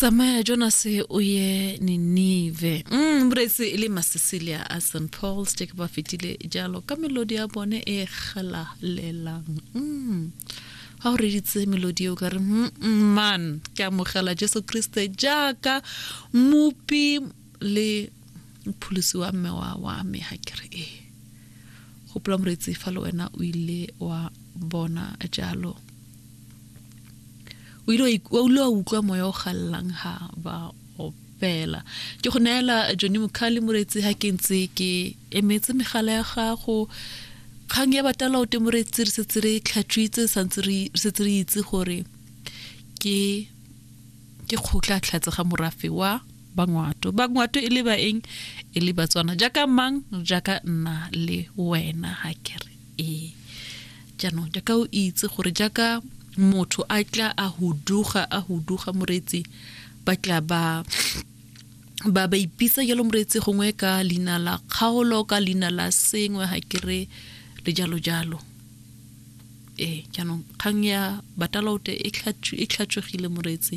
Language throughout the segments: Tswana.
tsamaya jonase o ye ninive mm, mretse e le masesilia a st paul steke ba fetile jalo ka melodi ya bone e galalelang mm. ga o reditse melodi eo ka re mm, mm, man ke amogela jesu kriste jaaka mopi le mpholosi wa mme wa wa me ga ke re e gopola moretsi fa le wena o ile wa bona jalo o ile wa ile wa utlwa moya o gallang ha ba opela ke go neela jone mokhali moretsi ha ke ntse ke emetse megala ya gago kgang ya batala o temoretsi re setse re tlhatswitse santse re setse re itse gore ke ke kgotla tlhatse ga morafe wa bangwato bangwato e le baeng e le batswana jaaka mang jaaka nna le wena ha kere ee jaanong jaaka o itse gore jaaka motho a tla a huduga a huduga moreetsi ba tla ba ba ba ipitsa jalo moreetsi gongwe ka leina la kgaolo ka leina la sengwe ga ke re le jalo jalo ee jaanong kgang ya batalaote e tlhatswegile moreetsi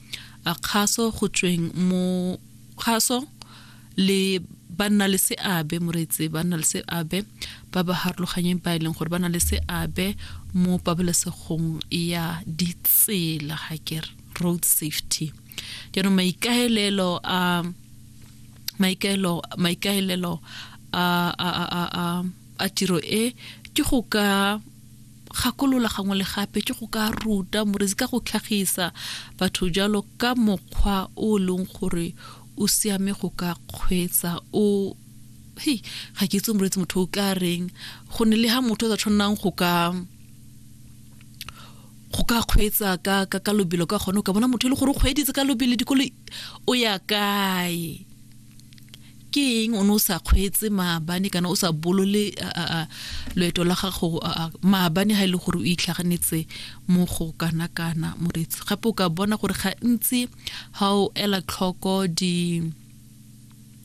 A kgaso go tsweng mo kgaso le banna le seabe moreetse banna le seabe ba ba harologanyeng ba e leng gore ba na le seabe mo pabalesegong ya ditsela ga ke road safety jaanong maikaelelo a maikaelelo maikaelelo a a a a tiro e ke go ka gakolola gangwe le gape ke go ka ruta morezi ka go tlhagisa batho jalo ka mokgwa o e leng gore o siame go ka kgweetsa o hei ga ke itse morezi motho o ka reng go ne le ha motho o sa tshwanang go ka go ka kgweetsa ka ka ka lobelo ka gone o ka bona motho e le gore o kgweeditse ka lobelo dikolo o ya kae ke eng o ne o sa kgweetse maabane kana o sa bolole loeto la gago maabane ga e le gore o itlhaganetse mo go kana kana moretsi gape o ka bona gore gantsi ga o ela tlhoko di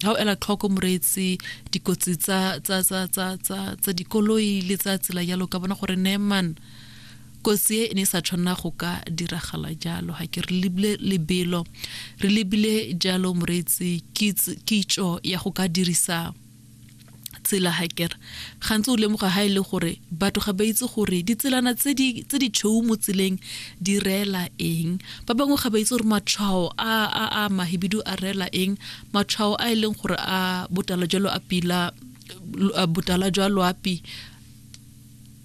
ga o ela tlhoko moreetsi dikotsi tsa dikoloi le tsa tsela jalo ka bona gore neman Kotsi e e ne e sa tshwanela go ka diragala jalo. Ga ke re lebile lebelo, re lebile jalo moreetsi kitso ya go ka dirisa tsela hakere gantsi o lemoga ha ile e gore batho ga ba itse gore ditselana tse di tse di tshweu mo tseleng di reela eng ba bangwe ga ba itse gore matshwao a a a mahibidu a reela eng matshwao a e leng gore a botala jalo a pila botala jwa loapi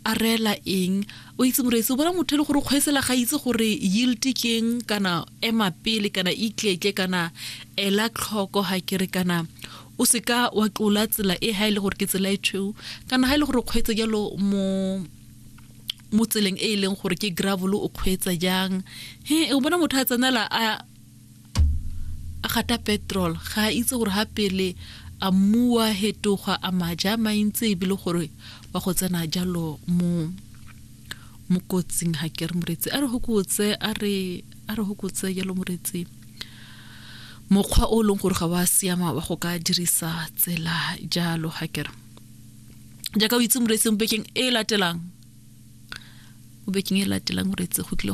a reela eng o itse moreetsi o bona motho e le gore kgweetsela ga itse gore yield keng kana ema pele kana itletle kana ela tlhoko ga kere kana o se ka wa tlola tsela e ga e le gore ke tsela e tshweu kana ga e le gore kgweetse jalo mo mo tseleng e e leng gore ke gravel o kgweetsa jang he o bona motho a tsenela a a gata petrol ga a itse gore ga pele a mmuwa hetogwa a maja a mantsi ebile gore wa go tsena jalo mo mo kotsing ga ke re moretsi a re hokotse a re a re hokotse jalo moretsi mokgwa o e leng gore ga wa siama wa go ka dirisa tsela jalo ga ke re jaaka o itse moretsi mo bekeng e latelang mo bekeng e latelang moretsi go tlile